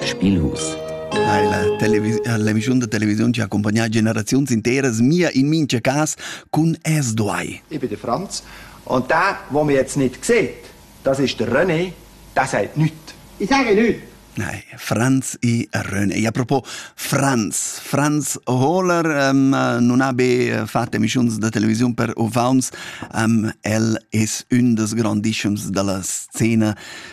Spielhus. Hai la, l'emissiun da televisiun ci ha accompagnato generazioni intere, mia in mince cas, con es duai. Ich bin der Franz. Und der, den man jetzt nicht sieht, das ist der René, der sagt nichts. Ich sage nichts. Nein, Franz e René. E a propos Franz, Franz Hohler um, non ha be fatto emissioni da televisione per uvaunts, um, el es un des grandissimi della scena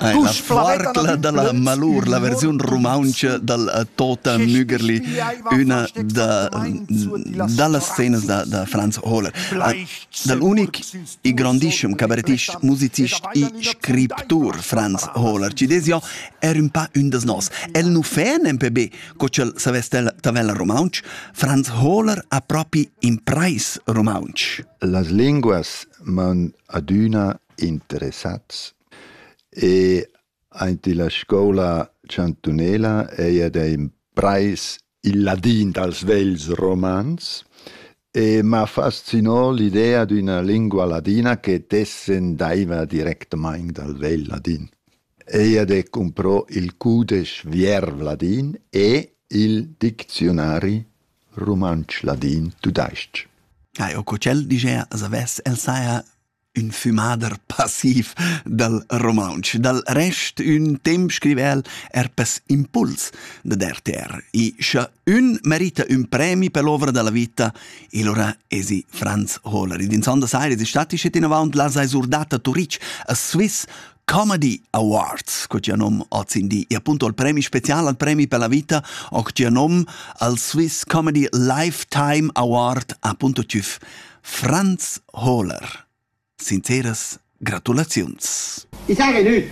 Tusch Flarcla dalla Malur, la versiun rumauntscha dal eh, Tota Mügerli, üna da, dallas scenas da, da Franz Hohler. Eh, dal unic e grandissem cabarettist, musicist e scriptur Franz Hohler, ci des jo, er un pa un des nos. El nu fan en PB, co ch'el saveste tavella rumaunch, Franz Hohler ha propi impreis rumaunch. Las linguas man adüna interessats. E aint illa scoula chantunela eir da imprais il ladin dals vegls romans e m'ha fascinò l'idea d'üna lingua ladina che descendaiva directamaing dal vegl ladin. Eir de comprò il cudesch Vierv ladin e il dicziunari rumantsch ladin tudais-ch. Ja, eu co tschel diger, as avess el saja ün fümader passiv dal rumauntsch. Dal rest ün temp scriva'l er pes impuls dad RTR. E scha ün merita ün premi per l'ovra da la vita, il ora esi Franz Hohler. Ed insonda saira es stati schet inavaunt la sai surdata Turic a Swiss Comedy Awards, co gia nom ozindi, e appunto al premi special al premi per la vita, och gia nom al Swiss Comedy Lifetime Award, appunto tüf Franz Hohler. Sinceras gratulaziuns. I s'ha gnü!